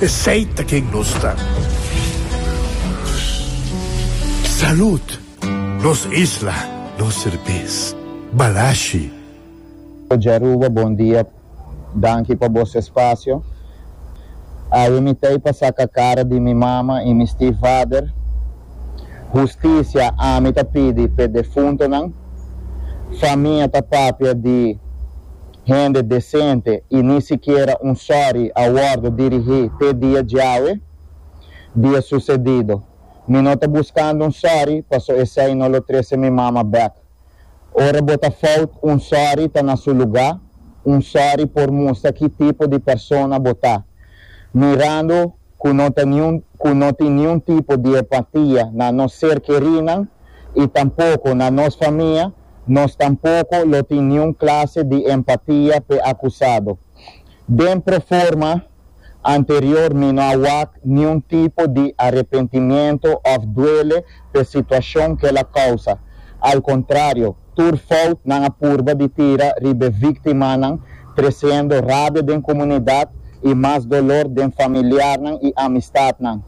Esey ta ken nos ta. Salud! Nos isla, nos serbes. Balashi. Djaruba bon dia danki pa bos espacio awe mi tei pa saca cara di mi mama y mi stief vader husticia ami ta pidi p'e defuntonan famia ta papia di Hende desente i ni sikiera un sòri a wòrdu dirigí te dia djawe, dia susedido. Mi no ta buskando un sòri paso esei no lo trese mi mama bèk. Ora bo ta fout, un sòri ta na su lugá, un sòri por mustra ki tipo di persona bo ta. Mirando ku no ta niun ku no tin niun tipo di empatia na nos ser kerinan i tampoko na nos famia, Nos tampoko lo tin niun klase di empatia p'e akusado. Den proforma anterior mi no a wak niun tipo di arepentimiento òf duele p'e situashon k'el a kousa. Al kontrario, tur fout nan a purba di tira riba e víktimanan, tresiendo rabia den komunidat i mas dolor den familiarnan i amistatnan.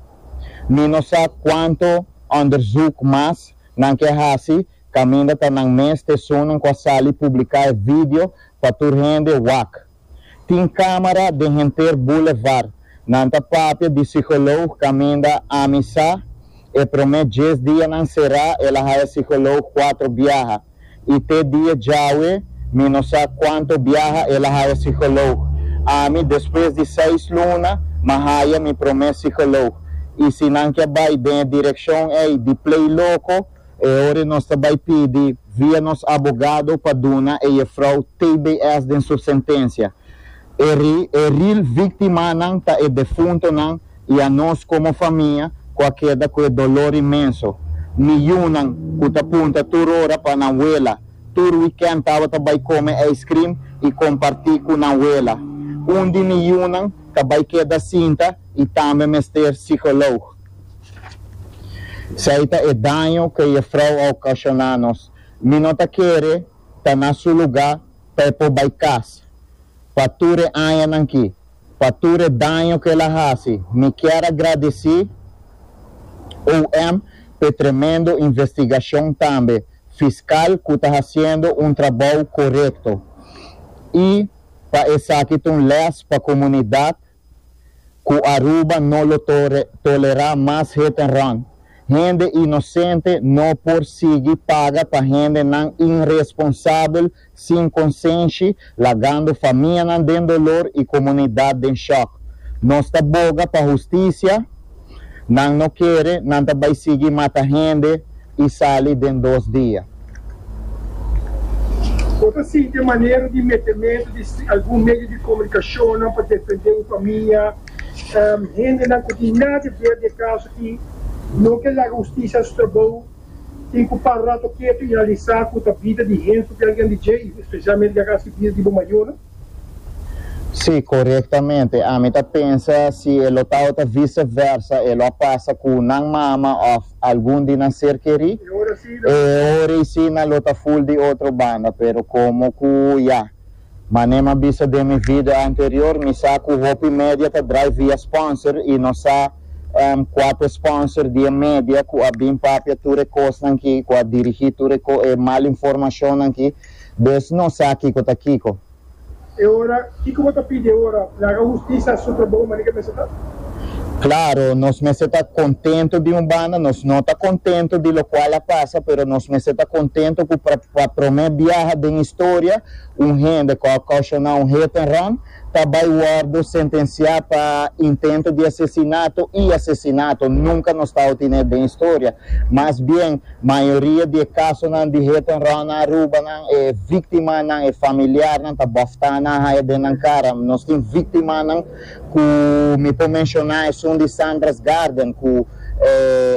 Mi no sa kuantu òndersùk mas nan ke hasi Caminda ta nan mes te esunnan cu a sali publica e video pa tur hende wak. Tin camera den henter boulevard. Nan ta papia di psicoloog caminda ami sa e prome dies dia nan cera el a haya psicoloog cuatro biaha y te dia djawe mi no sa cuanto biaha el a haya psicoloog. Ami despues di seis luna ma haya mi prome psicoloog y si nan ke bay den e direccion ey di play loco E ori nos ta bai pidi via nos abogado pa duna e jefrou tbs den su sentencia. E ri e ril victimanan ta e defuntonan y a nos como famia cu a keda cu e dolor inmenso. Mi yunan cu ta punta tur ora pa nan wela, tur weekend tabata bai come ice cream y comparti cu nan wela. Un di mi yunan ta bai keda sinta y tambe mester psycholoog. Sai ta e daño cu e frou a ocasiona nos. Mi no ta kere ta na su luga pa e por bai casa. Pa tur e añanan ki, pa tur e daño cu el a haci, mi kier a gradici OM pa e tremendo investigacion tambe fiscal cu ta haciendo un trabou corecto y pa esaki ta un les pa comunidad. Cu Aruba no lo tolera mas hit and run. Hende inocente no por sigui paga pa hendenan inresponsabel sin consenshi, lagando famianan den dolor y comunidad den shock. Nos ta boga pa husticia. Nan no kere, nan ta bai sigui mata hende i sali den dos dia. Bo ta sinti e manera di metementu di algun medio di komunikashonnan pa defendé bo famia? Hendenan ku tin nada ver di e kaso aki no ke laga hustisia su trabou. Tin ku para rato ketu i analisá ku ta bida di hende ku ta algen di djei, spesialmente ke a hasi bida di bo mayornan. Sí, korektamente. Ami ta pensa si e lo ta ota vise versa, e lo a pasa ku nan mama òf algun di nan ser kerí. E ora eisina lo ta ful di otro banda, pero komo ku ya Mané m'a bisa den mi video anterior, mi sa ku hopi media ta drai via sponsor i nos sa èm kua t'e sponsor di e media ku a bin papia tur e kosnan ki, ku a dirigí tur e mal informashonnan ki. Deus no sa kiko ta kiko. E ora, kiko bo ta pidi e ora? Laga hustisa supra bo manera ke mester ta. Klaro, nos mester ta kontentu di un banda, nos no ta kontentu di lokual a pasa, pero nos mester ta kontentu ku pa promé biaha den historia un hende ku a koshoná un hit and run, ta bai wòrdu sentensiá pa intento di asesinato i asesinato. Nunka nos tau tene et den historia. Mas bien, mayoria di e kasonan di hit and run na Aruba nan, e víktimanan, e familiarnan ta bòftá nan haya den nan kara. Nos tin víktimanan ku mi por menshoná esun di Sandra's Garden ku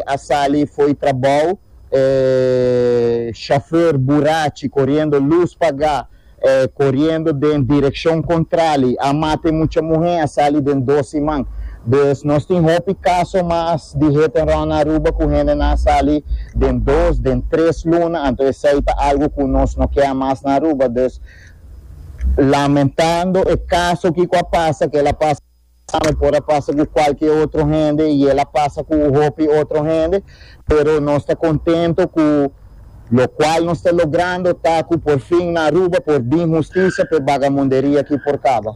a sali fo'i trabou, e shofèr burachi koriendo lus pagá. E koriendo den direkshon kontrali. A mata e mucha muhé, a sali den dos siman. Dus nos tin hopi kaso mas di hit and run na Aruba ku hendenan a sali den dos, den tres luna. Anto esei ta algu ku nos no kea mas na Aruba. Dus lamentando e kaso ki ku a pasa, kel a pasa. Tambe por a pasa cu cualke otro hende y el a pasa cu hopi otro hende, pero nos ta contento cu locual nos ta logrando ta cu por fin na Aruba por bin husticia p'e bagamunderia aki por caba.